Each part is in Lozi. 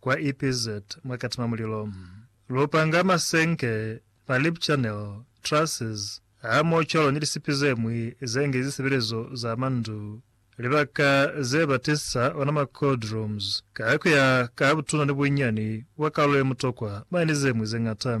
Kwa EPZ mwa katima mulilo. Lu panga masenke, ma lip channel, trusses, hamoocwalo ni lisipi ze ñwi ze nge zisebelezo za mwa ndu, libaka ze ba tisa ona mwa cold rooms, ka ku ya ka butuna ni bunyani bwa kalulo ye mutokwa mwa ni ze ñwi ze ñata.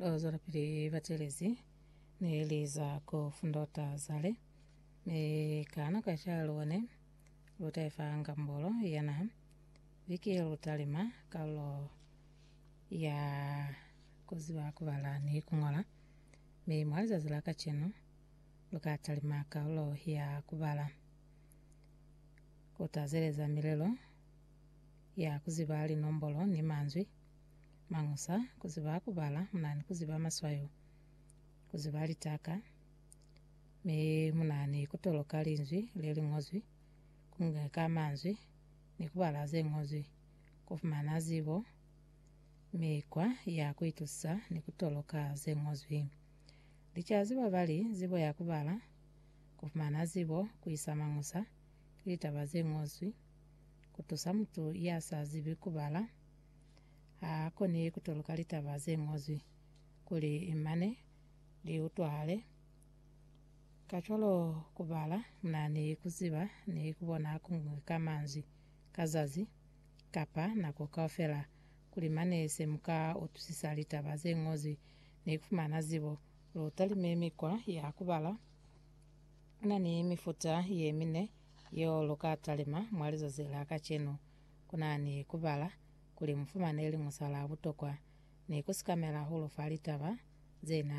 Bazwelapili batelezi ne li za ku fundota zale, mi ka nako ya calo ne lu taifa ngambolo ya naha. Viki ye lu talima kalulo ya ku ziba ku bala ni ku ngola, mi mwa lizazi la kacenu, lu ka talima kalulo ya ku bala, ku tazeleza milelo ya ku ziba linombolo ni manzwi, mañusa, ku ziba ku bala mu na ni ku ziba maswayo, ku ziba litaka, mi mu na ni ku toloka linzwi le li ñozwi, ku ngeka manzwi, ni ku bala ze ñozwi, ku fumana zibo, mikwa ya ku itusisa ni ku toloka ze ñozwi. Licazi babali zibo ya kubala, kufumana zibo, kuisa mañusa, ki litaba zeñozwi. Kutusa mutu ya sa zibi kubala, ha koni kutoluka litaba zeñozwi kuli mane li utwahale. Kacwalo kubala muna ni kuziba ni kubona kuñwi ka manzwi ka zazi, kapa nako kaufela, Kuli mane se mu ka utusisa litaba ze ñozwi ni ku fumana zibo, lu talime mikwa ya ku bala. Ku na ni mifuta ye mine yeo lu ka talima. Mwa lizazi la kacenu, ku na ni ku bala kuli mu fumane liñusa la butokwa ni ku sikamela hahulu fa litaba ze na